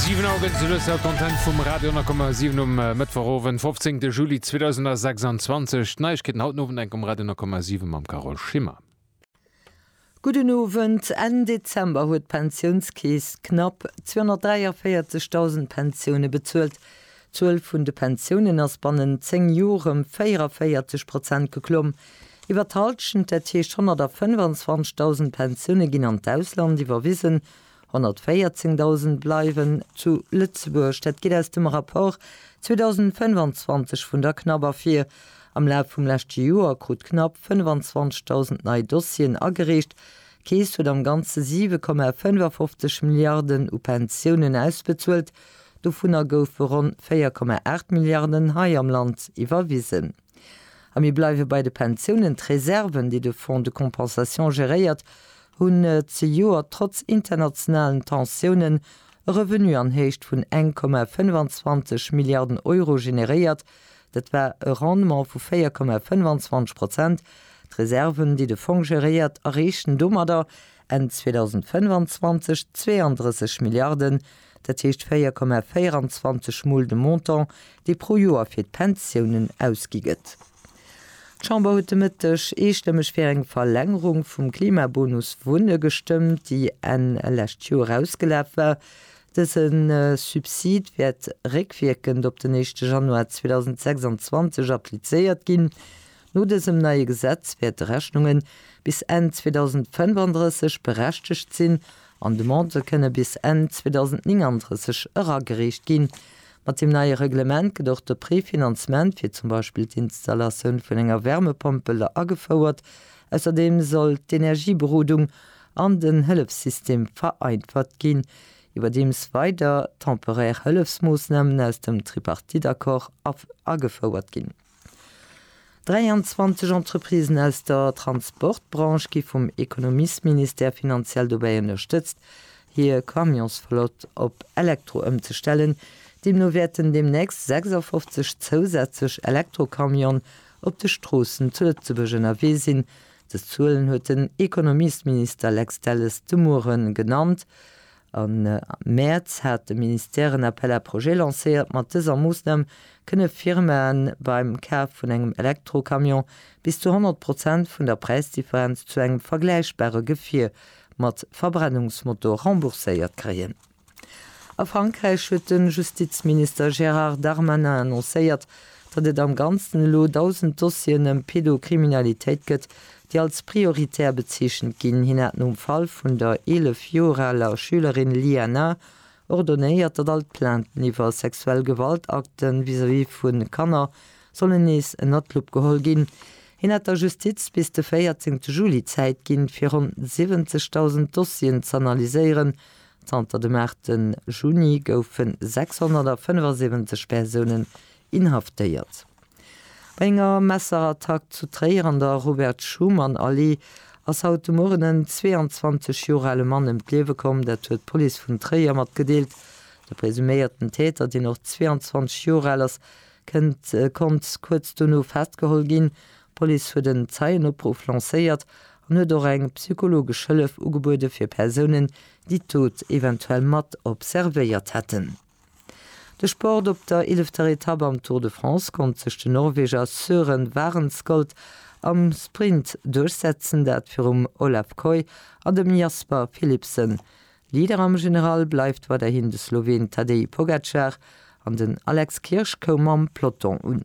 Siwen Auer gëtt et zelues haut d'Antenne vum Radio 10,7 um Mëttwochowend, 15 de Juli 2026. D'Neiegkeeten haut den Owend enk um Radio 10,7 mam Carole Schimmer. Gudden Owend. Enn Dezember huet d'Pensiounskeess knapp 243.000 Pensioune bezuelt. D'Zuel vun de Pensiounen ass bannent 10 Jor ëm 44 Prozent geklomm. Iwwer d'Halschent, dat heescht 125.000 Pensioune ginn an d'Ausland iwwerwisen, 114.000 bleiwen zu Lëtzebuerg. Dat geet aus dem Rapport 2025 vun der CNAB ervir. Am Laf vum leschte Joer krut d'CNAB 25.000 nei Dossieren agereecht. D'Keess huet am Ganze 7,55 Milliarden u Pensiounen ausbezuelt, dovunner goufe ronn 4,8 Milliarden hei am Land iwwerwisen. A mir bleiwe bei de Pensiounen. D'Reserven, déi de Fonds de compensation geréiert, hunn zejoert trotz internationalen Tensiounen e Revenu an Héicht vun 1,25 Milliarden Euro generéiert. Dat war e Rendement vu 4,25 Prozent. D'Reserven, déi de Fong geréiert, erreechen domadder Enn 2025 d'zweeëndrësseg Milliarden. dat heescht 4,24 Mol de Montant, dee pro Joer fir d'Pensiounen ausgi gëtt. D'Chamber huet de Mëtteg eestëmmeg fir eng Verlängerung vum Klimabonus Wunne gestëmmt, déi Enn lescht Joer ausgelaf war. Dëse Subsid wäert réckwierkend op den éischte Januar 2026 applizéiert ginn. No dësem neie Gesetz wäerte Rechnunge bis Enn 2035 berechtegt sinn An Demandë kënne bis Enn 2039 eragereecht ginn. Mat deem neie Reglement gëtt och de Prefinanzement fir zum Beispill d'Installatioun vun enger Wärmepompel agefouert. Ausserdeem soll d'Energieberodung an den Hëllefssystem vereinfacht ginn. Iwwerdeems weider temporaire Hëllefsmoossnamen aus dem Tripartite-Accord agefouert ginn. 23 Entreprisen aus der Transportbranche gi vum Ekonomiesministère finanziell dobäi ënnerstëtzt, hir Camionsflott op Elektro ëmzestellen. Deemno wäerten deemnächst 56 zousätzlech Elektrocamione op de Stroossen zu Lëtzebuerg ënnerwee sinn. Dës Zuelen huet den Ekonomiesminister Lex Delles de Muere genannt. Am Mäerz hat de Ministère en Appel à projets lancéiert. Mat dëser Moossnam kënne Firmaen beim Kaf vun engem Elektrocamion bis zu 100 Prozent vun der Präisdifferenz zu engem vergläichbare Gefier mat Verbrennungsmotor rembourséiert kréien. A Frankräich huet de Justizminister Gérard Darmanin annoncéiert, datt et am Ganzen elo 1.000 Dossieren ëm Pedocriminalitéit gëtt, déi als prioritär bezeechent ginn. Hien hat nom Fall vun der 11 Joer aler Schülerin Liana ordonéiert, datt all d'Plainten iwwer sexuell Gewaltakte vis-à-vis vu Kanner sollen nees ënner d'Lupp geholl ginn. Hien hat der Justiz bis de 14 Juli Zäit ginn, fir ronn 70.000 Dossieren z'analyséieren. Zanter dem 8 Juni goufe 675 Persounen inhaftéiert. Bei enger Messerattack zu Tréier an der Robert-Schuman-Allee ass haut de Mueren en 22 Joer ale Mann ëm d'Liewe komm. Dat huet d'Police vun Tréier matgedeelt. De presuméierten Täter, deen och 22 Joer al ass, kënnt konnt kuerz dono festgeholl ginn. D'Police huet en Zeienopruff lancéiert an huet och eng psychologesch Hëllef ugebuede fir Persounen, déi d'Dot eventuell mat observéiert hätten. De Sport op der eelefter Etapp am Tour de France konnt sech den Norweger Søren Wahrenskold am Sprint duerchsetzen, dat virum Olav Kooij an dem Jasper Philipsen. Leader am General bleift weiderhin de Sloween Tadej Pogacar an den Alex Kirsch koum am Peloton un.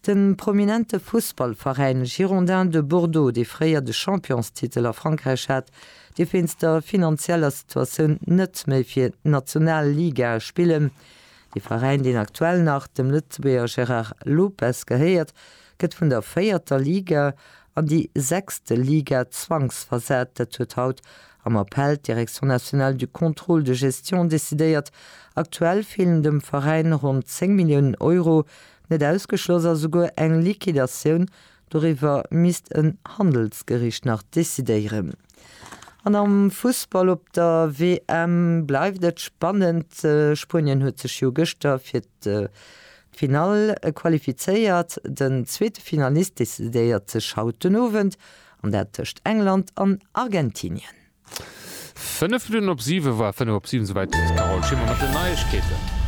De prominente Fussballveräin Girondins de Bordeaux, dee fréier de Championstitel a Frankräich hat, dierf wéinst der finanzieller Situatioun net méi fir d'Nationalligae spillen. De Veräin, deen aktuell nach dem Lëtzebuerger Gérard Lopez gehéiert, gëtt vun der véierter Liga an déi sechst Liga zwangsversat. Dat huet haut am Appell d'Direction nationale du contrôle de gestion decidéiert. Aktuell feelen dem Veräin ronn 10 Milliounen Euro, Net ausgeschloss ass esouguer eng Liquidatioun, doriwwer misst en Handelsgericht nach decidéieren. An am Fussball op der WM bleift et spannend. Spuenien huet sech jo gëschter fir d'Finall qualifizéiert. Den zweete Finalist decidéiert sech haut den Owend, an dat tëscht England an Argentinien. Fënnef Minutten op siwe war fënnef op siwen, souwäit d'Carole Schimmer mat den Neiegkeeten.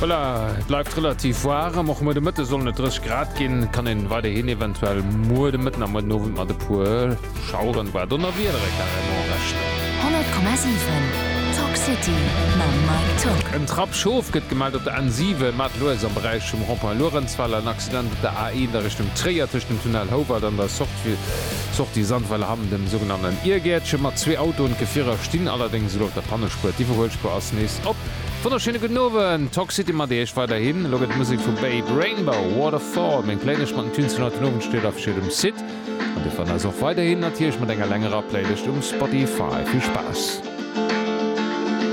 Voilà, et bleift relativ waarem, och muer de Mëtte sollen et 30 Grad ginn, et kann een weiderhin eventuell muer de Mëtten a muer den Owend mat e puer Schaueren, voire Donnerwiedere carrément rechnen. 100,7 Talk City mam Mike Tock. En Trapp Schof gëtt gemellt op der N7, Maartel-Loeres am Beräich vum Rond-Point Luerenzweiler. Accident op der A1 a Richtung Tréier tëscht dem Tunnel Houwald an der Sortie Sandweiler Hamm, dem sougenannten Iergäertche mat zwee Autoen. D'Gefierer stinn allerdéngs elo op der Pannespuer. D'Iwwerhuelspuer ass nees op. Wonnerschéine gudden Owend, Toxcity mat Iech weiderhin. Elo gëtt et Musek vu Babe Rainbow, Waterfall, meng Playlëscht mat den Tunes vun haut den Owend steet afegéiert um Site. An Dir fannt eis och weiderhin natierlech mat enger längerer Playlëscht um Spotify. Vill Spaass!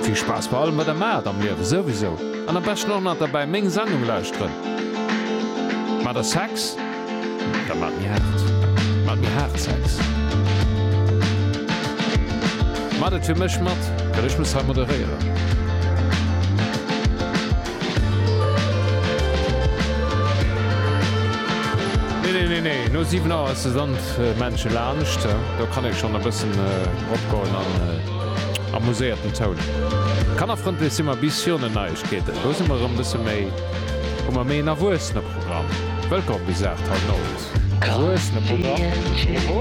Vill Spaass bei allem wat der maacht am Liewen souwisou an am beschten och nach derbäi meng Sendung lauschteren. Maacht der Sex? Da maacht méi haart. Maacht méi haart Sex. Maacht et fir mech mat well ech muss hei moderéieren. Nee, nee, nee, nee, no 7 Auer ass de Sand Männche laanscht. Do kann ee schonn e bëssen ropgoen an amuséierten Toun. Kannerfrëndlech si mer bis virun den Neiegkeeten. Do si mer erëm e bësse méi, hu mer méi en erwuessene Programm. Wëllkomm bis 8, haut Owend. Erwuessene Programm.